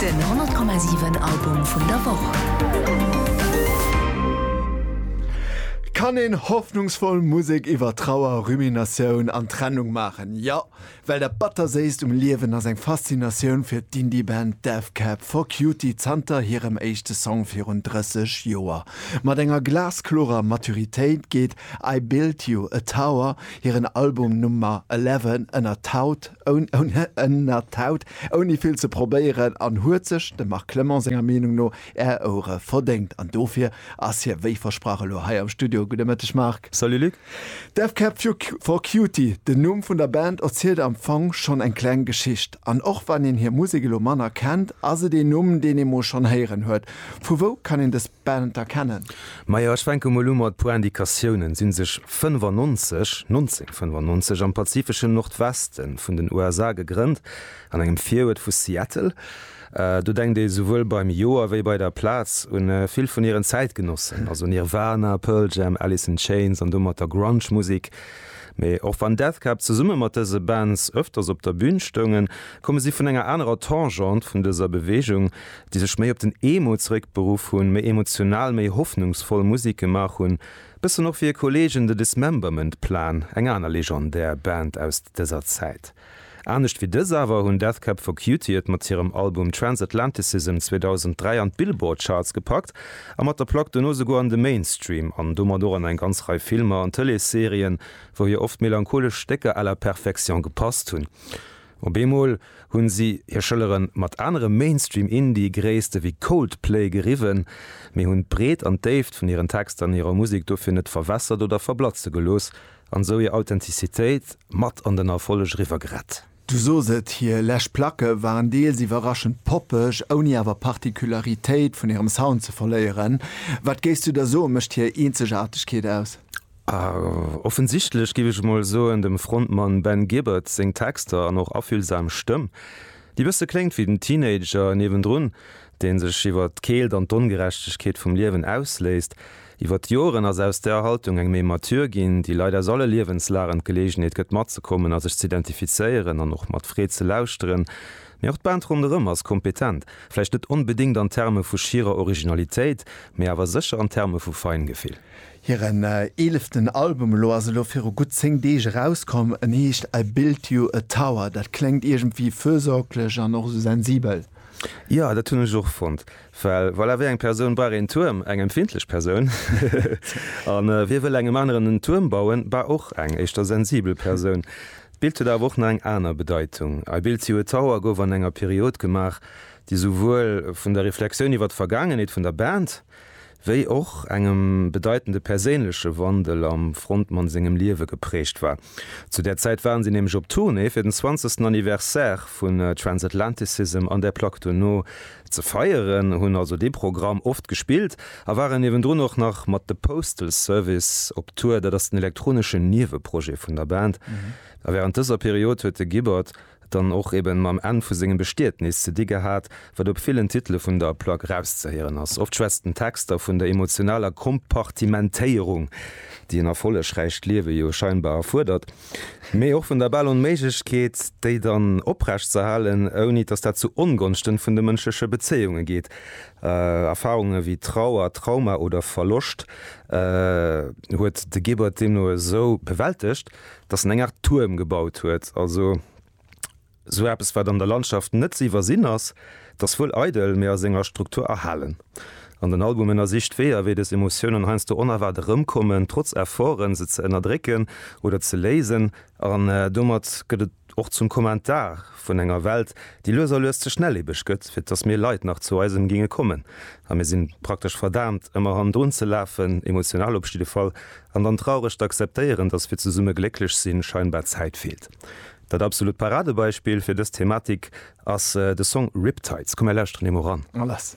Den 100,7 Album vun der Woch! Kann een hoffnungsvoll Musek iwwer Trauer, Ruminatioun an Trennung maachen? Jo, well dat Batterséisst um Liewen ass eng Faszinatioun fir d'Indie-Band Death Cab for Cutie zanter hirem éischte Song virun 30 Joer. Mat enger glasklorer Maturitéit geet I Built You a Tower, hiren Album Nummer 11, ënnert d'Haut. Ounenner Taut, ouni vill ze probéieren, an huet sech dem Marc Clement senger Meenung no Är Ouere verdéngt. An dofir ass hie wéi versprach elo hei am Studio. Gudde Mëtteg Marc. Salut Luc. Death Cab for Cutie, den Numm vun der Band, erzielt am Fong schonn eng kleng Geschicht. An och wann een hir Musek elo manner kennt, ass et een Numm, deen ee mol schonn héieren huet. Vu wou kann een dës Beamter kennen. Majo, ech fänke mol u mat puer Indikatiounen, sinn sech 95, 1995, am pazifeschen Nordweste vun den USA gegrënnt, an engem Virüert vu Seattle. Do denkt ee souwuel beim Joer wéi bei der Plaz un vill vun hiren Zäitgenossen, also Nirvana, Pearl Jam, Alice in Chains an domatter Grunge-Musik. Mee och wann Death Cab zesumme mat dëse Bands ëfters op der Bün stoungen, komme si vun enger anerer Tangente vun dëser Beweegung, déi sech méi op den Emo zeréck beruff hunn, méi emotional, méi hoffnungsvoll Musek gemaach hunn, bëssen och wéi e Kollegen The Dismemberment Plan, eng aner legendär Band aus dëser Zäit. Anescht wéi dës awer hunn Death Cab for Cutie et mat hirem Album Transatlanticism 2003 an d'Billboard Charts gepackt a mat der Plack dono souguer an de Mainstream an domat och an eng ganz Rei Filmer an Tëleesserien, wou hir oft melancholesch Stécker à la perfection gepasst hunn. Op eemol hunn si hir Schëlleren mat anere Mainstream-Indie-Gréisste wéi Coldplay geriwwen, mee hunn d'Breet an d'Déift vun hiren Texter an hirer Musek dofir net verwässert oder verblatze gelooss an esou hir Authentizitéit mat an den Erfolleg eriwwer gerett. Du sos et, hir lescht Placke waren deels iwwerraschend poppeg, ouni awer Particularitéit vun hirem Sound ze verléieren. Wat géifs du da soen, mécht hir Eenzegaartegkeet aus? A offensichtlech, giff ech mol soen, dem Frontmann Ben Gibbard seng Texter an och affühlsam Stëmm, déi bësse kléngt wéi den Teenager niewendrun, deen sech iwwert d'Keelt an d'Ongerechtegkeet vum Liewen ausléisst. Iwwert d'Joren ass aus där Haltung eng méi mature ginn, déi Leit aus alle Liewenslagen d'Geleegenheet gëtt matzekommen a sech z'identifizéieren an och mat Freed ze lauschteren. Mee och d'Band ronderëm ass kompetent, vläicht net onbedéngt an Terme vu schierer Originalitéit, mee awer sécher an Terme vu Feingefill. Hiren eeleften Album elo ass elo viru gutt 10 Deeg erauskomm. En heescht I Built You A Tower. Dat kléngt iergendwéi fürsorglech an och esou sensibel. Jo, dat hunn ech och fonnt, well voilà, wéi eng Persoun brauch een Tuerm? Eng empfindlech Persoun. A wie wëll engem aneren en Tuerm bauen? Bah, och eng éischter sensibel Persoun. D'Bild huet awer och nach eng aner Bedeitung. I Built You A Tower gouf an enger Period gemaach, déi souwuel vun der Reflexioun iwwer d'Vergaangenheet vun der Band, wéi och engem bedeitende perséinleche Wandel am Frontmann sengem Liewe geprägt war. Zu där Zäit waren si nämlech op Tournée fir den 20. Anniversaire vun Transatlanticism an där Plack dono ze feieren, hunn also dee Programm oft gespillt a waren niewendrun och nach mat The Postal Service op Tour, dat ass den elektroneschen Nieweprojet vun der Band. A wärend dëser Period huet de Gibbard. dann och eben mam Enn vu sengem Bestietnis ze di gehat, wat op villen Titele vun der Plack erauszehéieren ass. Oft schwätzt den Text da vun der emotionaler Kompartimentéierung, déi en erfollegräicht Liewe jo scheinbar erfuerdert, mee och vun der bal Onméiglechkeet, déi dann oprechtzerhalen, ouni dass dat zu Ongonschten vun de mënschleche Bezéiunge geet. Erfarunge wéi Trauer, Trauma oder Verloscht huet de Gebert deemno esou bewältegt, dass en eng Art Tuerm gebaut huet, also sou eppes wat an der Landschaft net ze iwwersinn ass, dass wuel eidel, mee a senger Struktur erhalen. An den Album ënnersicht Weeër, wéi des Emotiounen heiansdo onerwaart erëmkommen, trotz Efforten, se ze ënnerdrécken oder ze léisen. An domat gëtt et och zum Kommentar vun enger Welt, déi lues a lues ze schnelliebeg gëtt, fir dass mir Leit nach zu eisem géinge kommen. A mir si praktesch verdaamt, ëmmer hannendrun ze lafen, emotional op jidde Fall, An dann traureg d'akzeptéieren, dass fir zesumme glécklech sinn, scheinbar Zäit feelt. Dat absolut Paradebeispill fir dës Thematik ass de Song Riptides. Komm mir lauschteren him mol ran. Mal lass.